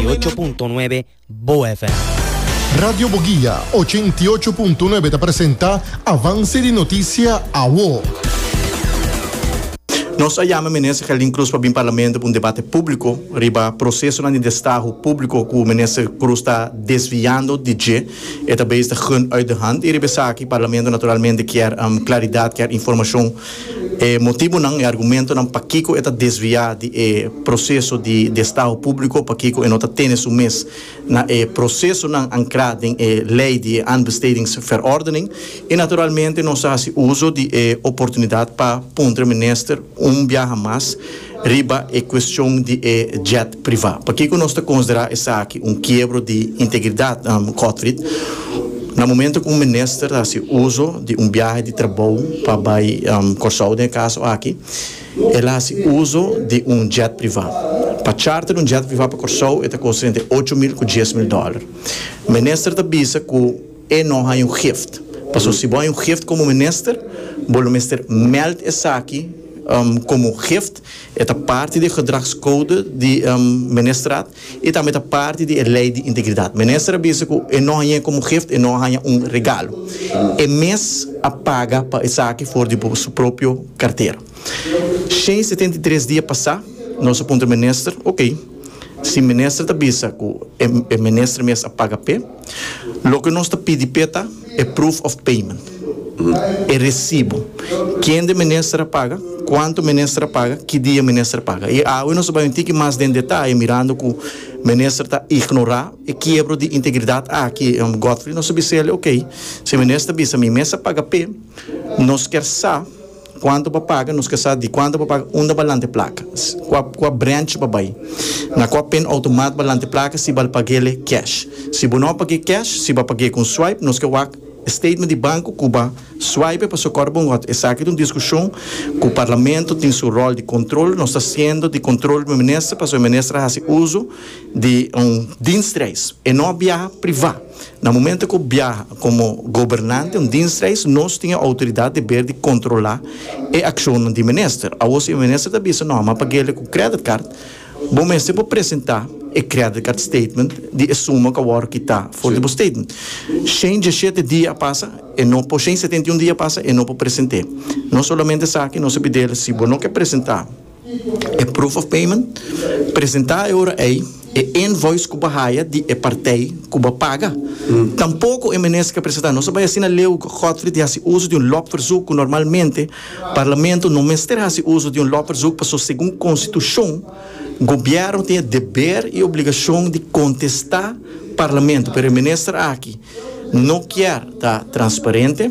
88.9 Bo FM. Radio Boguia 88.9 ta presenta Avance di Noticia Awo. Nos a yama Minister Gelin Cruz pa bin Parlamento pa un debate publico riba procesonan di destaho publico cu Minister Cruz ta desviando di dje. E ta bezig ta gun uit de hand y riba esaki Parlamento naturalmente kier claridad, kier informacion. e motibunan, e argumentonan pakiko e ta desviá di e proseso di destaho públiko, pakiko e no ta tene su mes na e prosesonan ankrá den e lei di e Aanbestedingsverordening i naturalmente nos a hasi uso di e oportunidat pa puntra Minister un biaha mas riba e cuestion di e jet priva. Pakico nos ta considera esaki un kiebro di integridad, Kotfrid, na momento cu un minister ta haci uzo di un biahe di trabou pa bay Corsou, den e caso aki, el a haci uzo di un jet priva. Pa charter un jet priva pa Corsou e ta costa entre ocho mil cu dies mil dollar. Minister ta bisa cu. E no haña un gift. Paso si bo haña un gift como minister, bo lo mester meld esaki como un gift. E ta parti di e gedragscode di Ministerraad y tambe ta parti di e ley di integridad. Minister a bisa cu e no hañae como un gift, e no a haña un regalo. E mes a paga pa esaki for di bo su propio cartera. Shen setenta y tres dia pasa, nos a puntra minister, Ok, si minister ta bisa cu e minister mes a paga p'e, Loke nos ta pidi p'e ta e proof of payment, e resibu, kende minister a paga, kuantu minister a paga, ki dia minister a paga. I awe nos ta bai un tiki mas den detaye mirando ku minister ta ignorá e kiebro di integridat aki, Godfrey nos a bisa el, ok, si e minister bisa mi mes a paga p'e, nos kier sa, Cuanto pa paga, nos ke sa di cuanto pa paga unda ba lante placa, cua cua branch ba bay, na cua pin automat ba lante placa si bal pagele cash. Si bo no page cash, si ba page con swipe, nos ke wak e statement di banco cu ba swipe pa socorro bo ngot. Esaki ta un discusion cu Parlamento tin su rol di control, nos ta haciendo di control bo minister pasobra e minister a haci uzo di un dienstreis, e no a biaha priva. Na momento cu biaha como gobernante un dienstreis nos tin e autoridad deber di controla e accionnan di minister. Awo si e minister ta bisa no, ma paguele cu credit card, bo mester por presenta e credit card statement di e suma cu a worde kita for di bo statement. Shen dieschete dia a pasa e no por, shen setenta y un dia a pasa e no por present'e. Nos solamente sa aki, nos a pidel si bo no ke presenta, E proof of payment presentá e ora ei e invoice ku bo haya di e partij ku bo paga. Tampoko e Minister presentá nos a bai asina Leo Godfrey di hasi uso di un lopverzoek ku normalmente Parlamento no mester hasi uso di un lopverzoek paso segun Konstitushon Gobièrnu tin e deber i obligashon di kontestá Parlamento pero e Minister aki no kier ta transparente.